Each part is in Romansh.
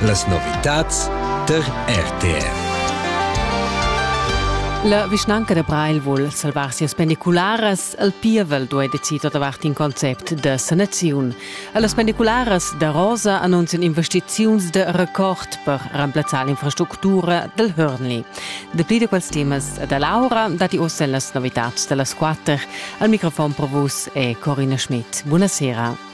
Las novitads tar RTR. La vischnanca da Breil vul salvar sias pendicularas. El pievel duei decider davart in concept da sanaziun. Las pendicularas da Rosa annunzian investiziuns de record per remplazzar l'infrastructura del Hörnli. Dapli de quels temas da Laura dati ossa las novitads dellas quatter. Al microfon pro vus è Corina Schmidt. Buonasera.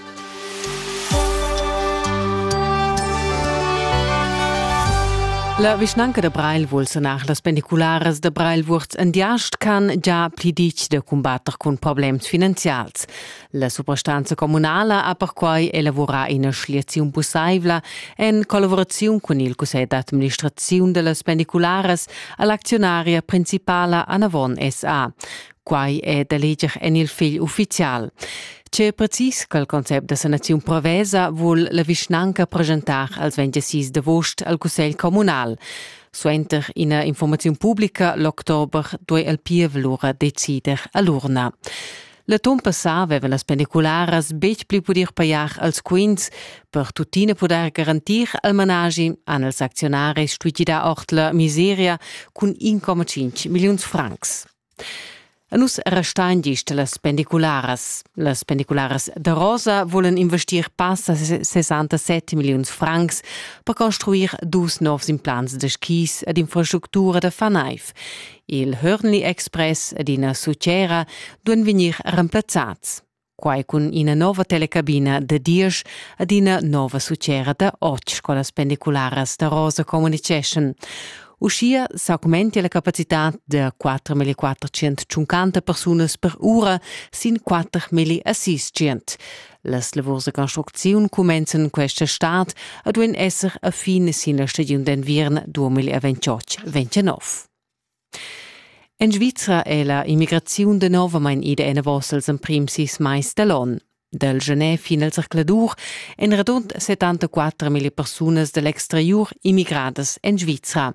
La vischnanca da Breil vul sanar las pendicularas da Breil Wurz en Diast can già pli ditg da cumbatter cun problems finanzials. La suprastanza communala ha perquai elavorà ina schliaziun pussaivla en collaboraziun cun il cussegl d'administraziun da las pendicularas a l'acziunaria principala Anavon SA. Quai è da leger en il fegl uffizial. Tge precis che il concept da sanaziun prevesa vul la vischnanca presentar als 26 d'agost al Cussegl communal. Suenter ina informaziun pubblica l'october duei il pievel lura decider a l'urna. La ton passà avevan las pendicularas betg pli pudir pajar als quints, per tuttina pudair garantir al managi han els acziunaris stuì gidar ord la miseria cun 1,5 milliuns francs. Nus restain gist las pendicularas. Las pendicularas da Rosa volen investir passa 67 milliuns francs per construir dus novs implants da skis ed infrastructura da fanaiv. Il Hörnli Express ed ina sutgera duan vegnir remplazzats. quai cun ina nova telecabina da diesch ad ina nova succera da otg scolas pendicularas da Rosa communiceschan. Uschia s'augmentia la capacitad da 4.450 persunas per ura sin 4.000 Las lavurs da construcziun cumenzan questa stad e duin esser a fin sin la stagiun d'enviern 2028-29. En Svizra è la immigraziun danovamain ida enavos als emprims sis mais da l'onn. Dal gener fin al zercladur èn radund 74.000 persunas da l'exteriur immigradas en Svizra.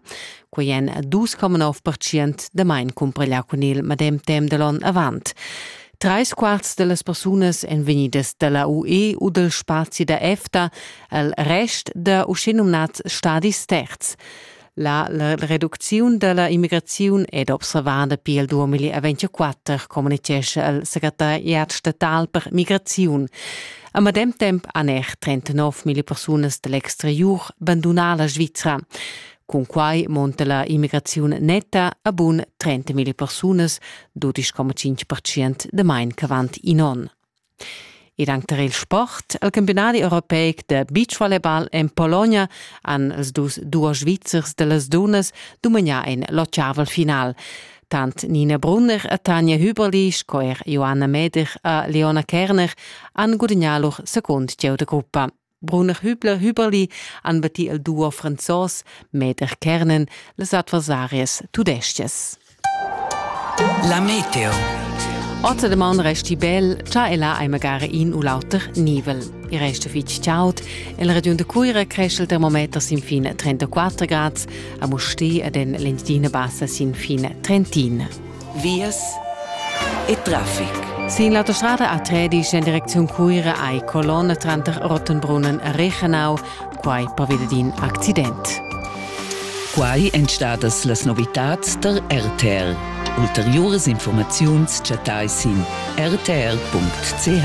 Quai èn 2,9% damain cumpareglià cun il medem temp da l'onn avant. Trais quarts da las persunas èn vegnidas da la UE u dal spazi da EFTA, al rest da uschenumnads stadis terz. La reducziun dalla immigraziun ed observada pil 2024 communitgescha el secretariat statal per migraziun. A medem temp han er 39.000 persunas dall'exteriur bandunà la Svizra. Cun quai monta la immigraziun netta a bun 30.000 persunas, 12,5% de main ch'avant in onn. Ed anc tar il sport. Il campiunadi europeic de beachvolleyball en Pologna han els dus duos Svizzers de las dunnas dumagnà en l'ottavel final. Tant Nina Brunner e Tanja Hüberli sco er Joanna Meder e Leona Kerner han gudagnà lur secund gieu de gruppa. Bruner Hübler Hüberli han batti il duo franzos Meder Kernen las adversarias tudeschias. La Meteo. Otter de man resti bel, cha ella ei magari in u l'auter nivel. Il resto fitg chaud. In region de Cuira cresce il termometer sin fine 34 grad, a Musti ed en l'Entina bassa sin fine 31. vias e traffic. Sin l'autostrada A13 en direcziun Cuira ei colonna tranter Rottenbrunnen e Rechenau, quai per via d'in accident. Quai èn stadas las novitads der RTR. Ulteriuras informaziuns chattai sin rtr.ch.